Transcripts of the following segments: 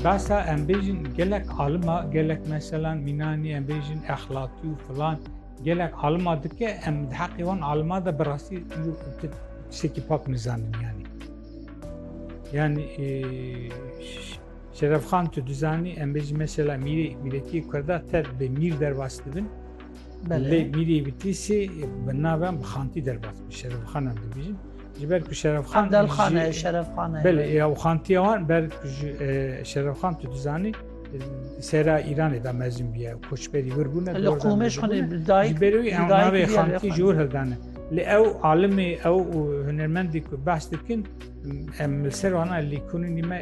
Basa em bêjin gelek alima gelek mesela mînanî em bêjin exlatî û filan gelek alima dike em di heqê wan alima de bi rastî tiştekî pak nizanin yanî. Yani e, Şerefxan tu dizanî em bêjin mesela mîrê mîretî Kurda ter bi mîr derbas dibin. Lê mîrê Bitîsê bi navem bi xantî derbas bi Şerefxan em dibêjin. Ji ber ku Şerefxan Evdelxan e, Şerefxan e. Belê ya û xantiya wan ber Şerefxan tu dizanî sera Îranê da mezin bûye koçberî wir bûne Li qûmê ji xwe dayik ji berê wî ew navê xantî ji wir hildane li ew alimê ew û hunermendî ku behs dikin em li ser wana lîkonînî me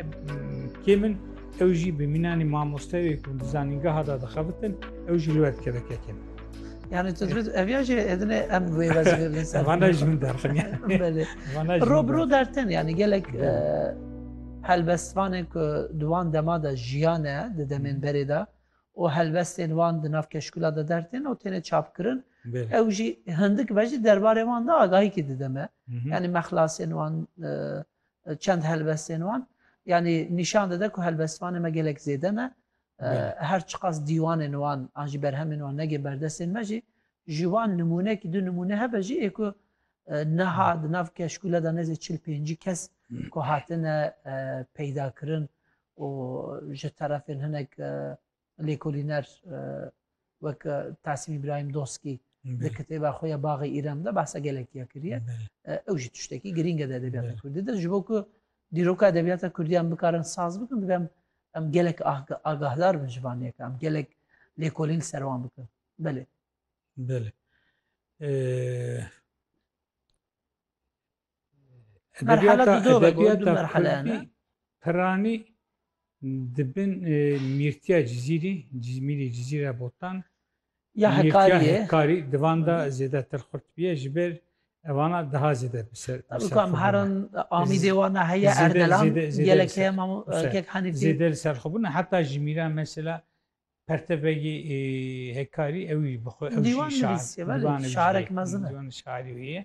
kêm in ew jî bi mînanî mamosteyê ku di zanîngeha da dixebitin ew jî li we dikeve kekin Yani tu dibit ev ya jî edine em wê vazifê bin ser. Vana jî min derxin ya. Belê. Vana jî. Rob ro dertin yani gelek e, helbestvanên ku di wan dema de jiyane di demên berê de û helbestên wan di nav keşkula de dertin û têne çapkirin Belê. ew jî hindik ve jî derbarê wan de agahîkî dideme Mhm. yani mexlasên wan e, çend helbestên wan yani nîşan dide ku helbestvanê me gelek zêde ne Her çiqas dîwanên wan an jî berhemên wan nege ber destên me jî, ji wan nimûnekî du nimûne hebe jî ê ku niha di nav keşkûle de nêzî çil pêncî kes ku hatine peydakirin û ji terefên hinek lêkolîner Wek Tasîm Îbrahîm Doskî di kitêba xwe ya Baxê Îrem de behsa gelekî ya kiriye. Ew jî tiştekî girîng e di edebiyata Kurdî de. Ji bo ku dîroka edebiyata Kurdî em bikarin saz bikin divê em em gelek agahdar bin ji van yek em gelek lêkolîn li ser wan bikin. Belê. Belê. Edebiyata, edebiyata Kurdî piranî di bin mîrtiya Cizîrî, Cizmîrî Cizîra Botan ya hekariyê hekarî divan da zêdetir xurt biye ji ber evana daha zêde biser. Kam herin amîdê wana heye erdelan gelek heye kek hanî zêde li ser xwe bûne heta ji mîra mesela Perteveyî hekkarî ew jî bi xwe ew jî şair şairek mezin e. Şairî wî ye.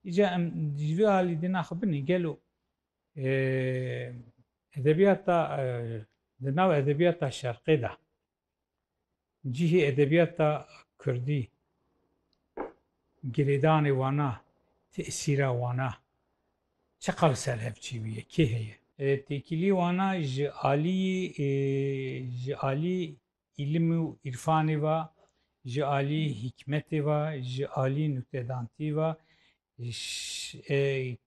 Îca em ji vê alî dîna xwe binê gelo edebiyata di nav edebiyata şerqê de cihê edebiyata kurdî girêdanê wana tesîra wana Çiqas li ser hev çêbûye, kê heye? Têkilî wana ji alîyî ji alî îlim û îrfanê ve, ji alî hîkmetê ve, ji alî nûktedantî ve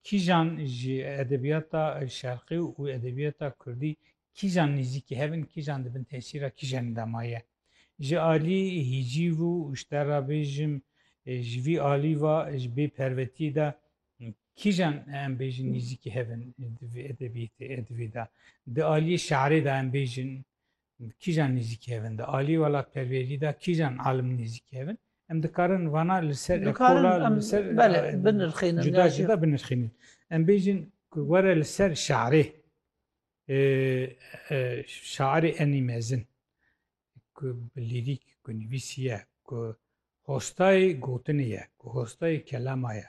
kîjan ji edebiyata şerqî û edebiyata kurdî kîjan nêzîkî hev in, kîjan di bin tesîra kîjanê de maye. Ji alî hîcîv û ji te re bêjim ji vî alî ve ji bêpervetîyê de Kîjan em bêjin nêzîkî hev in di vê edebiyêtê edivê de? Di aliyê şarê de em bêjin kîjan nêzîkî hev in? Di aliyê welatperwerî de kîjan alim nêzîkî hev in? Em dikarin vana li ser ekola li ser binirxînin cuda cuda binirxînin. Em bêjin ku were li ser şarê şairê enî mezin ku bi lîrîk ku nivîsî ye ku hostayê gotinê ye ku hostayê kelama ye.